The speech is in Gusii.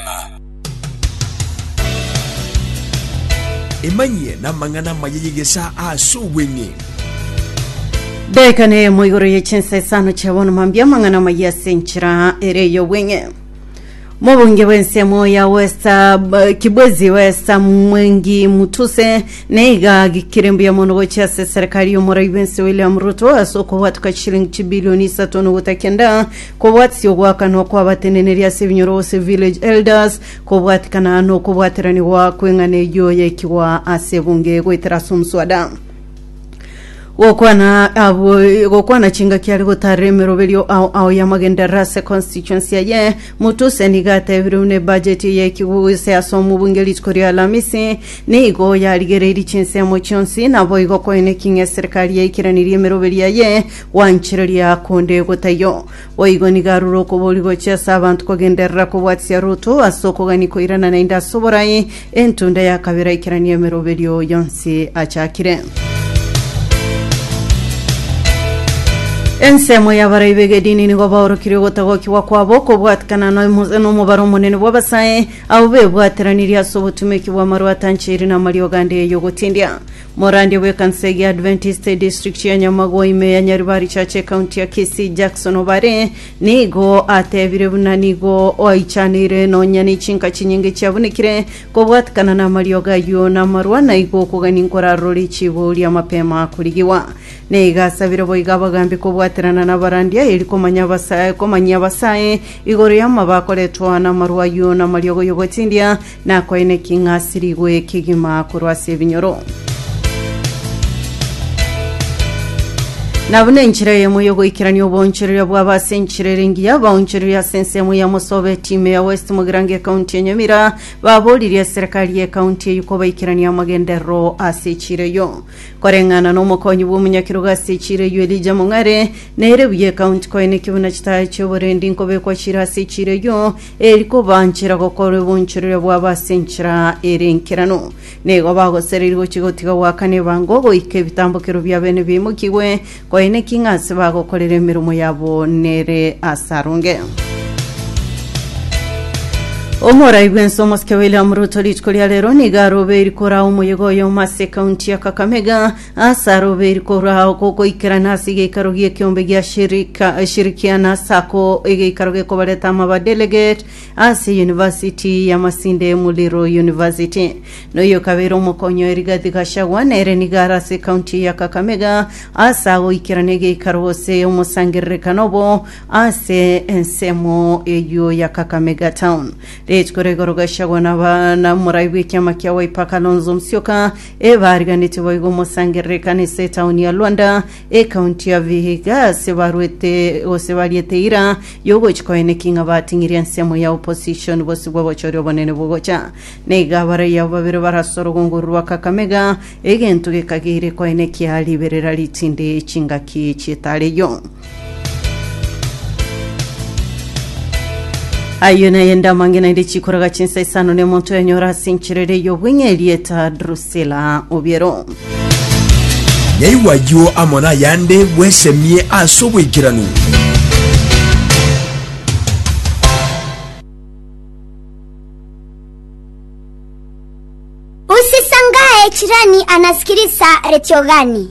ng'a. Emanyie namang'ana amaya y'egesaa ase obweng'e. Daika neyemo igoro ye chinsa isano chia bono mambia amang'ana amaya ase enchera ere ey'obweng'e mobunge bw'ensemo ya westa b- kibwezi westa mwengi mutuse neiga agikire mbuya mono gochia ase serikali y'omorai bwense william ruto ase okobwatuka chilingi chibilioni isato nogota kenda Kobwatisia ogoakanwa kw'abateneneri ase ebinyoro gose village elders, kobwatikana nokobwateranigwa kw'eng'ana eyio yaikigwa ase ebunge goetera ase omoswada. Gokwana abo gokwana chingaki are gotaarera emeroberio ao ao y'amagenderero ase constituency eye. Mutuse nigo atebire buna ebudget eye yaikigwe gose ase omobunge rituko ria Alamisi nigo yarigereirie chinsemo chionsi naboigo koine eking'ee eserekari yaikiranirie emeroberio eye Gwanchereria konde gotaiyo. Boigo nigo arure okobori gochia ase abanto kogenderera kobwatisia Ruto ase okogania koirana naende ase oborai, entunda ya kabere aikeranie emeroberio yonsi achakire. Ensemo y'abarai b'egedini nigo baorokirie ogotagokigwa kwabo kobwatikana nomo- nomobaro omonene bw'abasae, abwo bebwateranirie ase obotumeki bw'amaru atancheiri na amariogo ande y'ogotindia. Morandia bw'ekanisa eye ya Adventist edistrict ya Nyamagwa ime ya Nyaribari Church ecounty ya Kisii Jackson Obare nigo atebire buna nigo oaichaneire nonya nechinka chinyinge chiabunekire kobwatikana namariogo ayio namarwa naigo okogania nkorarorori chibuuria mapema korigigwa neiga asabire boiga abagambi kobwaterana nabarandia eri komanya abasa komanyia abasae igoro yamaba akoretwa namarwa ayio namariogo yogotindia Nakoine ki ng'asirigwe kegima korwa ase ebinyoro? Nabuna enchera eyemo y'ogoikerania oboonchoreria bwabo ase enchera ere engiya, abaonchoreria ase ensemo ya Mosobe etime ya West Mogirango ekaunti ya Nyamira baboririe eserekari y'ekaunti eyio kobaikerania amagenderero ase echira eyio. Koreng'ana n'omokonyi bw'omonyakerogo ase echira eyio Elijah Mong'are, nere buya ekaunti koine ki buna chitaaya chi'oborendi nkobekwa chire ase echira eyio, eri kobaanchera gokora obonchoreria bwabo ase enchera ere enkeranu. Nigo bagosereria gochia gotiga goakana ebango, goika ebitambokero biabo ene biaimokigwe, koina ki ng'a ase bagokorera emeremo yabo nere asaronge. Omorai bwensi omosike William Ruto rituko ria rero nigo arobeiri koraa omoyega oyomo ase ekaunti ya Kakamega Ase aroberi korwa ao gokoikerana ase egeikaro gi'ekeombe gia shirika, shirikiana ase ako egeikaro gekobareta amaba delegate ase University ya Masinde Muliro University. Na oyo kabere omokonyi oye Rigathi Gachagua nere nigo are ase county ya Kakamega ase agoikerana egeikaro gose omosangererekano obo ase ensemo eyio ya Kakamega town. Rituko rigoro Gachagua naba na morai bw'ekiama kia Wiper Kalonzo Musyoka Ebaariganeti boigo mosangerere ekanisa etaoni ya Luanda, ekaunti ya Vihiga, ase barwete gose bariete eira y'ogochi koene ki ng'a bating'iri ensemo ya opposition bosio bw'obochori obonene bogocha. Naiga abarai abo babere barase orogunguru rwa Kakamega, egento gekageire koene kia riberera ritinde chingaki chi'etaare eyio. Ayio naye ndamange naende chikoraga chinsa isano ne omonto yanyora ase enchera ere y'obweng'e erieta Drusila Obiero. Nyaigwa ayio amo nayande bwesemie ase oboikeranu. Usisangae chirani anasikiliza redio gani?